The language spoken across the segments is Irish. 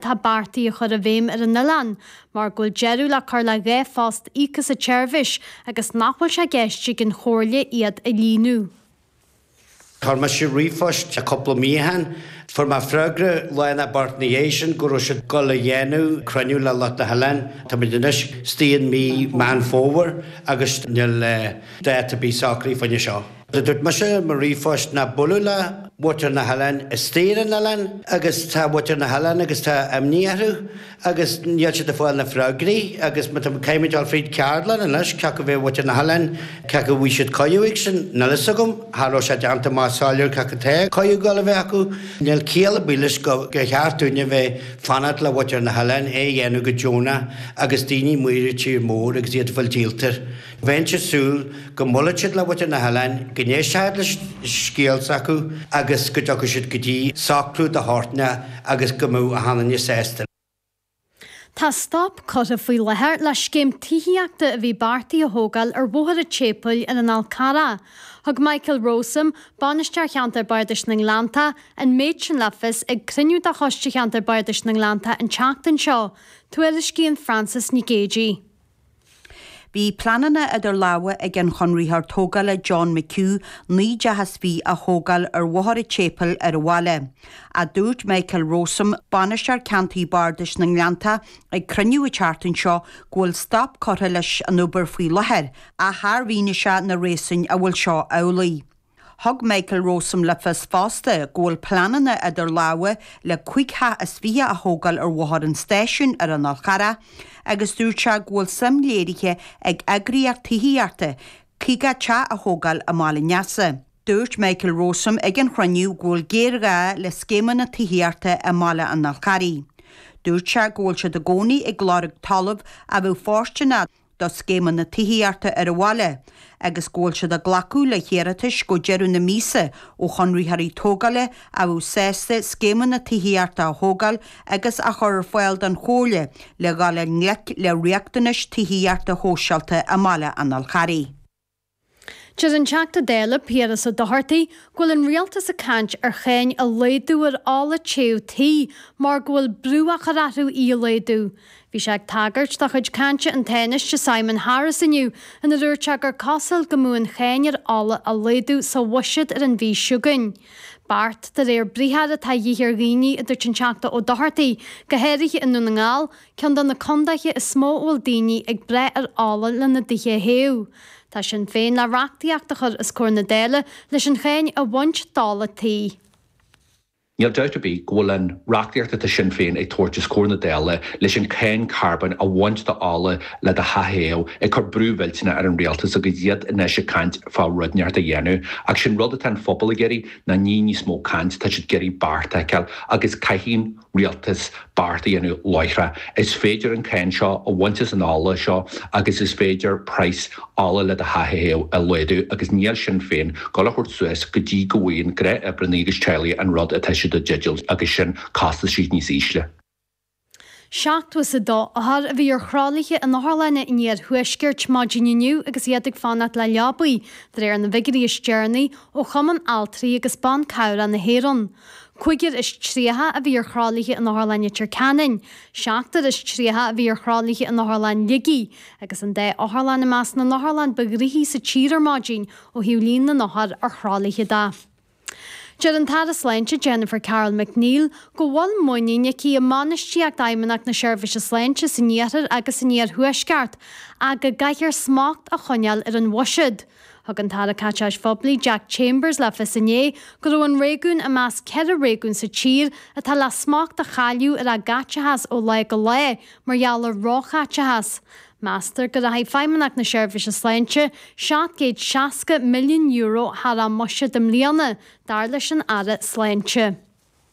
Tá beartaithe a chur i bhfeidhm ar an oileán mar go bhfuil deireadh le cur le dhá phost íoctha sa tseirbhís agus nach bhfuil sé i gceist ag an Chomhairle iad a líonadh. Chuir mise ríomhphost cúpla mí ó shin. Fuair mé freagra lá nó beirt ina dhiaidh sin go raibh siad ag dul a dhéanamh cruinniú le lucht na hoileáin. Táimid anois istigh in mí Meán Fómhair agus níl dáta ar bith socraithe fá choinne seo. Dúirt mise i mo ríomhphost nach bualadh le muintir na hoileáin istigh ar an oileán agus tá muintir na hoileáin agus tá imní orthu agus níl siad ag fáil na freagraí agus má tá muid, caithfimid dul fríd ceardlann anois cé acu a bhí muintir na hoileáin, cé acu a bhí siad coimheáigh sin, níl fhios agam, cha raibh sé déanta maith soiléir cé acu tá coimheágáil a bheith acu, níl ciall ar bith leis gur cheart dúinn a bheith fanacht le muintir na hoileáin é a dhéanamh go deonach agus daoine amuigh ar tír mór agus iad ag fáil díolta. Bheinnse ag súil go mbuailfeadh siad le muintir na hoileáin, go n-éistfeadh siad le scéal s'acu agus go dtiocfadh siad go dtí socrú de shórt inteacht agus go mbeadh achan duine sásta. Tá stop curtha faoi láthair le scéim tithíochta a bhí beartaithe a thógáil ar Bhóthar a' tSéipeil ar an Fhál Charrach. Thug Michael Rowsome, Bainisteoir Cheantar Bardais na nGleannta, an méid sin le fios ag cruinniú de Choiste Cheantar Bardais na nGleannta an tseachtain seo. Tuairiscíonn Frances Nic Géidigh. Bhí pleananna idir lámha ag an chonraitheoir tógála John McHugh naoi dteach is fiche a thógáil ar Bhóthar a' tSéipeil ar an bhaile, ach dúirt Michael Rowsome, Bainisteoir Ceantair Bardais na nGleannta, ag cruinniú an tseachtain seo go bhfuil stop curtha leis an obair faoi láthair, ach char mhínigh sé na réasúin a bhfuil seo amhlaidh. Thug Michael Rowsome le fios fosta go bhfuil pleananna idir lámha le cúig theach is fiche a thógáil ar Bhóthar an Stáisiúin ar an Fhál Charrach agus dúirt sé go bhfuil suim léirithe ag eagraíocht tithíochta 50 teach a thógáil i mBaile an Easa. Dúirt Michael Rowsome ag an chruinniú go bhfuil géarghá le scéimeanna tithíochta i mBaile an Fhal Charraigh. Dúirt sé go bhfuil siad i gcónaí ag lorg talamh a bheadh fóirsteanach, do scéimeanna tithíochta ar an bhaile, agus go bhfuil siad ag glacadh le hiarratais go deireadh na míosa ó chonraitheoirí tógála a bheadh sásta scéimeanna tithíochta a thógáil agus a chur ar fáil don Chomhairle le dhul i ngleic le riachtanais tithíochta shóisialta i mBaile an Fhalcarraigh. Deir an Teachta Dála Piaras Ó Dochartaigh go bhfuil an Rialtas ag caint ar cháin a laghdú ar ola téamh tí mar go bhfuil brú á chur orthu í a laghdú. Bhí sé ag tagairt do chuid cainte an Tánaiste Simon Harris inniu ina dúirt sé gur cosúil go mbeadh an cháin ar ola á laghdú sa bhuiséad ar an mhí seo chugainn. Beart de réir briathar atá a dhíth ar dhaoine a dúirt an Teachta Ó Dochartaigh, go háirithe i nDún na nGall, ceann de na contaetha is mó a bhfuil daoine ag brath ar ola lena dtithe a théamh. Tá Sinn Féin le reachtaíocht a chur os comhair na Dála leis an cháin a bhaint d'ola tí. Níl dabht ar bith go bhfuil an reachtaíocht atá Sinn Féin ag tabhairt os comhair na Dála leis an cháin carbóin a bhaint d'ola le do theach a théamh ag cur brú mhillteaneach ar an Rialtas agus iad anois ag caint fá rud inteacht a dhéanamh. Ach sin rud atá an pobal ag iarraidh ná ní níos mó caint, tá siad ag iarraidh beart a fheiceáil agus caithfidh an Rialtas beart a dhéanamh láithreach. Is féidir an cáin seo a bhaint as an ola seo agus is féidir praghas ola le do theach a théamh a laghdú agus níl Sinn Féin ag gabháil a thabhairt suas go dtí go bhfaigheann gnáthoibrithe agus teaghlaigh an rud atá siad i dteideal agus sin costaisí níos ísle. Seachtó is a dó othar a bhí ar thralaithe in otharlanna an iarthuaiscirt maidin inniu agus iad ag fanacht le leabaí, de réir na bhfigiuirí is deireanaí ó Chumann Altraí agus Ban Cabhrach na hÉireann. Cúigear is tríocha a bhí ar thralaithe in Otharlann Leitir Ceanainn, seachtar is tríocha a bhí ar thralaithe in Otharlann Shligigh agus an dá otharlann i measc na n-otharlann ba ghnoithí sa tír ar maidin ó thaobh líon na n-othar ar thralaithe de. Deir an tAire Sláinte Jennifer Carroll MacNeill go bhfuil muinín aici i mbainistíocht Fheidhmeannacht na Seirbhíse Sláinte san iarthar agus san iarthuaisceart ach go gcaithfear smacht a choinneáil ar an bhuiséad. Thug an tAire Caiteachais Phoiblí Jack Chambers le fios inné go raibh an réigiún i measc ceithre réigiún sa tír atá le smacht a chailleadh ar a gcaiteachas ó lá go lá mar gheall ar róchaiteachas. Meastar go rachaidh Feidhmeannacht na Seirbhíse Sláinte €760 milliún thar a mbuiséad i mbliana, dar leis an Aire Sláinte.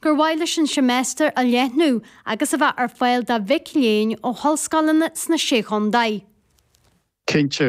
gur mhaith leis an seimeastar a leathnú agus a bheith ar fáil do mhic léinn ó ollscoileanna sna Sé Chontae. Cinnte,